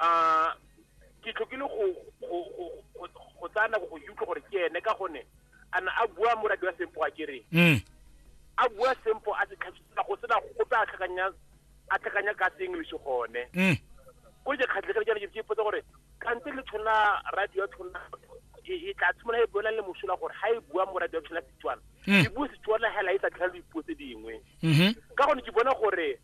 a ke tlhokile go go go- go- go tsaya nako go utlwa gore ke ene ka gone a na a bua moradi wa sempo a kereng Mm. a bua sempo a se tlhagisisa go sena gope a tlhakanya a tlhakanya ka se english gone Mm. ko je khatlhekele jana ke ipotsa gore kante le tshwana radio ya tshwana e e tla tshwana e bona le mosola gore ha e bua mo radio ya tshwana Setswana Mm. e bua Setswana hela e sa tlhalo dipuo tse dingwe Mhm. ka gone ke bona gore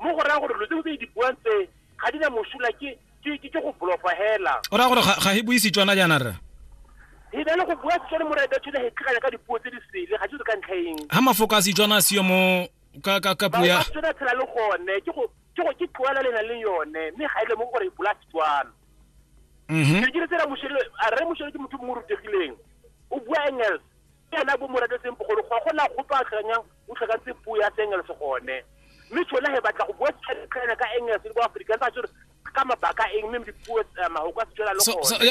mo go raya gore lo tse tse di buang tse ga di na mosola ke ke ke go blofa hela o raya gore ga he buisi tswana jaana rra he na le go bua setswana mo raya tsone he tlhakanya ka dipuo tse di sele ga di ka ntlha eng ha mafoko a setswana a seo mo ka ka ka puo ya tsona tshela le gone ke go ke go ke tloela le na le yone mme ga ile e mo gore e bula setswana mhm ke dire tsela moshelo a re moshelo ke motho mo rutegileng o bua engels ena bo mo ratetseng bogolo go gona gope a tlhakanyang o tlhakantse puo ya seengles gone mme tshone ge batla go bua setlhaena ka engles le bo afrikaans a tsore ka mabaka eng mme dipuo eh, mahoko a setswana le gone